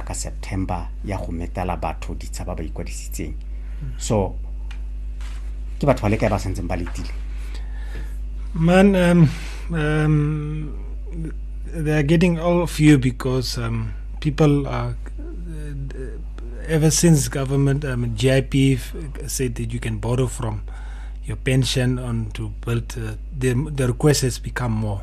ka september ya go metela batho ditsha ba ba ikwadisitseng so ke batho ba le kae ba santseng ba letile man um, um, they are getting all of you because um, people are uh, ever since government um, GIP said that you can borrow from your pension on to build uh, the, the request has become more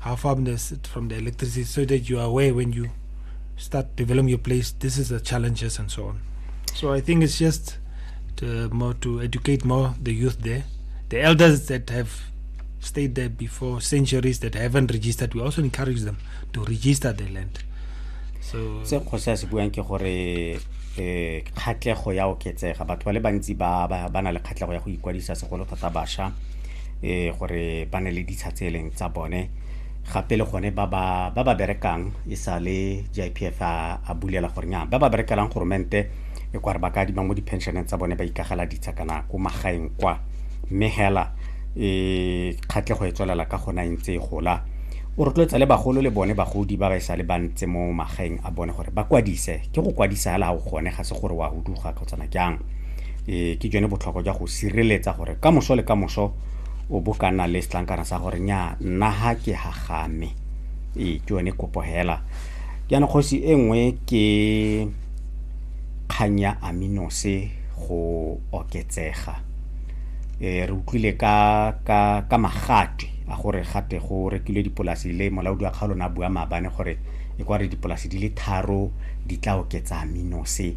how far from the, from the electricity so that you are aware when you start developing your place this is the challenges and so on so i think it's just to, more to educate more the youth there the elders that have stayed there before centuries that haven't registered we also encourage them to register their land so se kgosi a se buang ke gore um kgatlego ya oketsega batho ba le bantsi ba na le kgatlego ya go ikwadisa segolo thata bašwa gore ba ne le ditsha tse e leng tsa bone gape le gone ba ba berekang e sa le GIPF a bulela gore nya ba ba berekelang goromente e kware ba ka adima mo di-pensioneng tsa bone ba ikagela ditsha kana ko magaeng kwa mme hela e kgatlhego e tswelela ka gona e ntse e gola o rotloetsa le bagolo le bone bagodi ba ba e sa le bantse mo magaeng a bone gore ba kwadise ke go kwadisa hela ga o gone ga se gore wa huduga kgotsana jang e ke jone botlhokwa jwa go sireletsa gore ka moso le ka moso o bo ka nna le setlankana sa gore nya nna ha ke hagame ee ke yone kopo hela jaanong kgosi e nngwe ke kgang ya aminose go oketsega e re utlwile ka ka ka magatwe a gore gate go rekilwe dipolasi le molaodi wa kgaolo na bua maabane gore e kwa re dipolasi di le tharo di tla oketsa aminose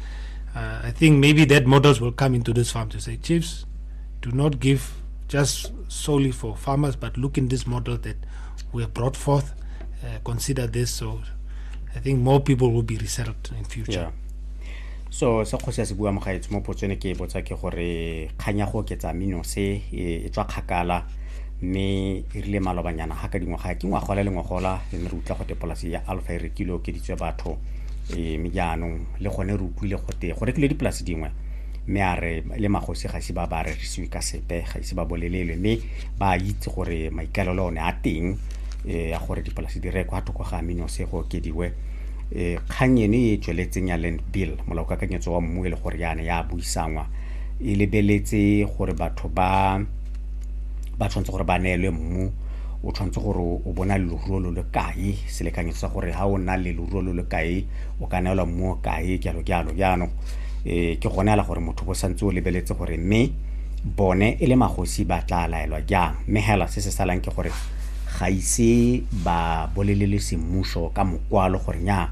Uh, I think maybe that models will come into this farm to say, chiefs, do not give just solely for farmers, but look in this model that we have brought forth, uh, consider this. So I think more people will be resettled in future. Yeah. so se kgosi ya se bua mogaetsho mo potsone ke e botsa ke gore kganya go oketsa mino se e, e tswa kgakala mme e rile malobanyana ga ka dingwaga ke ngwagola le ngwagola e ne re utlwa go tepolasi ya alpha e rekile okeditswe batho e me jaanong le gone re utlwile gote go rekilwe dipolase dingwe mme a re le magosi ga ise ba ba rerisiwe ka sepe ga ise ba bolelelwe mme ba itse gore maikaelelo one a teng eh, ya gore dipolase di rekwa thoko ga aminose go okediwe eh, kgang eno e e tsweletseng ya land bill molaokakanyetso wa mmu e le gore yana ya buisanngwa e lebeletse gore batho ba ba tshwanetse gore ba neelwe mmu o tshwanetse gore o bona leruo lo le kae selekanyo sa gore ha o na le leruo lo le kae o ka neelwa mmu o kae jalo jalo jaanong um ke gone ala gore motho bo santse o lebeletse gore mme bone e le magosi ba tla laelwa jang mme hela se se salang ke gore ga ise ba bolelele semmuso ka mokwalo gore nya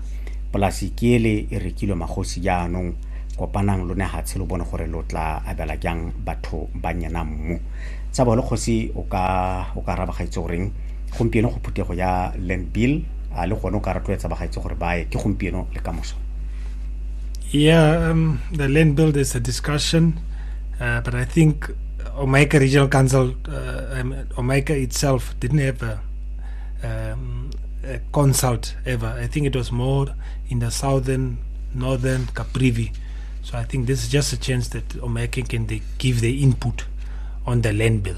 polasi ke ele e rekilwe magosi jaanong kopanang lo ne ga tshelo bone gore lo tla abela jang batho ba nyena mmu tsa bole kgosi o ka o ka raba gaitse goreng gompieno go phuthego ya land bill a le gone o ka rotloetsa bagaetse gore ba ye ke gompieno le ka moso yeah um, the land bill is a discussion uh, but i think omeka regional council uh, um, omeka itself didn't have a, um, a consult ever i think it was more in the southern northern caprivi so i think this is just a chance that omeka can they give their input on the land bill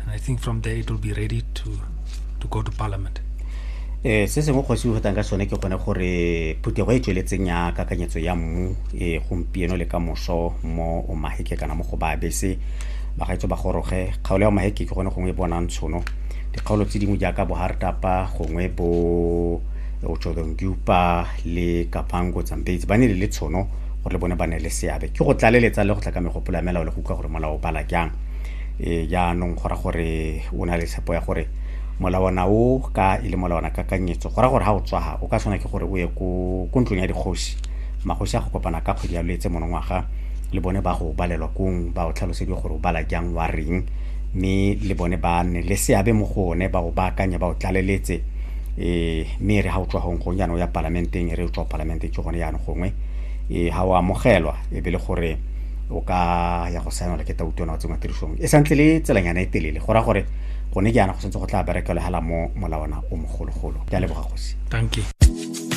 and i think from there it will be ready to, to go to parliament eh se sengwe kgosi o ka sone ke gone gore phuthego e tsweletseng ya kakanyetso ya mmu e gompieno le ka moso mo o maheke kana mo go ba bese bagaetso ba goroge kgaolo ya maheke ke gone gongwe e bonang tshono dikgaolo tse dingwe jaaka bo hartapa gongwe bo otshodongupa le kapango tsambetsi ba ne le le tshono gore le bone ba ne le seabe ke go tlaleletsa le go tla ka megopolo ya melao le go utlwa gore molao o bala jang e jaanong go ra gore o na le tshepo ya gore molawana o ka e le molawana kakanyetso go ra gore ga o tswaga o ka tshwana ke gore o ye ko ntlong ya dikgosi magosi a go kopana ka kgwedi ya letse monongwaga le bone ba go balelwa kong ba o tlhalosediwe gore o bala jang wa reng mme le bone ba nne le seabe mo go one ba o baakanye ba o tlaleletse um mme re ga o tswa gong gong jaanong ya palamenteng re o tswa palamenteng ke gone jaanong gongwe um ga o amogelwa e be le gore o ka ya go saenwa le ke tauto na o tsengwa tirisong e santse le tselanyana e telele go raya gore gone jaana go santse go tla berekelwa hela mo molawana o mogologolo ke a leboga gosi thank you